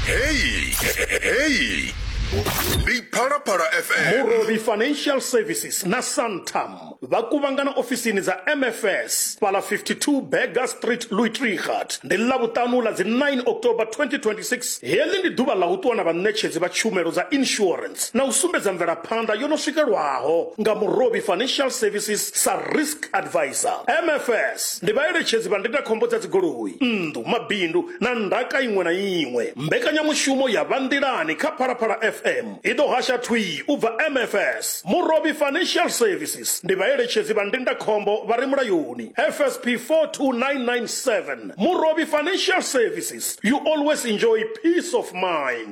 heyi heyi ndi phalaphala fm murobi financial services na santam vha kuvhangana ofisini dza mfs fhala 52 bega street luitrigat ndi ḽavhuṱanu ḽa dzi 9 october 2026 heḽi ndi ḓuvha ḽa u ṱuwa na vhaṋetshedzi vha tshumelo dza insurance na u sumbedza mvelaphanḓa yo no swikelwaho nga murobi financial services sa risk advisor mfs ndi vhaeletshedzi vha ndindakhombo dza dzigoloi nnḓu mabindu na ndaka iṅwe na iṅwe. Mbekanyamushumo ya Vha Nḓilani kha Phalaphala FM i ḓo hasha thwii u bva MFS. Murovhi Financial Services ndi vhaeletshedzi vha ndindakhombo vha re mulayoni, FSP 42997. Murovhi Financial Services, you always enjoy peace of mind.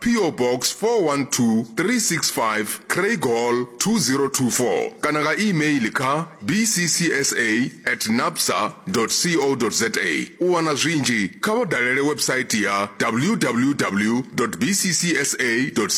PO Box 412365 Craigall 2024 kana nga e-mail kha bccsa at napsa co za. U wana zwinzhi kha vha dalele website ya www bccsa co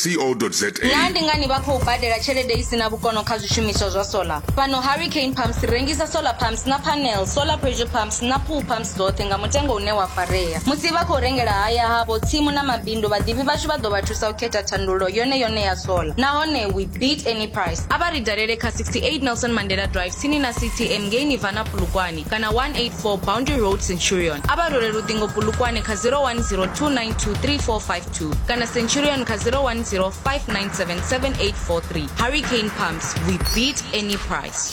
za. Naa ndi ngani vha khou badela tshelede i si na vhukono kha zwishumiswa zwa solar? Fhano Hurricane Pumps ri rengisa solar pumps na panel, solar pressure pumps na pool pumps. dzoṱhe nga mutengo une wa farea. Musi vha khou rengela haya havho, tsimu na mabindu, vhaḓivhi vhashu vha ḓo vha thusa u khetha thandululo yone yone ya sola. Nahone we beat any price. A vha ri dalele kha 68 Nelson Mandela Drive tsini na CTM ngei Nirvana Polokwane kana 184 Boundary Road Centurion. A vha rwele luṱingo Polokwane kha 0102923452 kana Centurion kha 0105977843. Hurricane Pumps, we beat any price.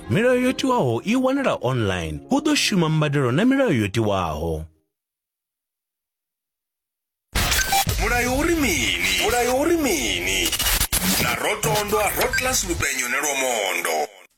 Milayo yo tiwaho i wanala online. Hu ḓo shuma mbadelo na milayo yo tiwaho. mulayo uri mini mulayo uri mini na rotondwa rotlas lupenyo ne lwa mondo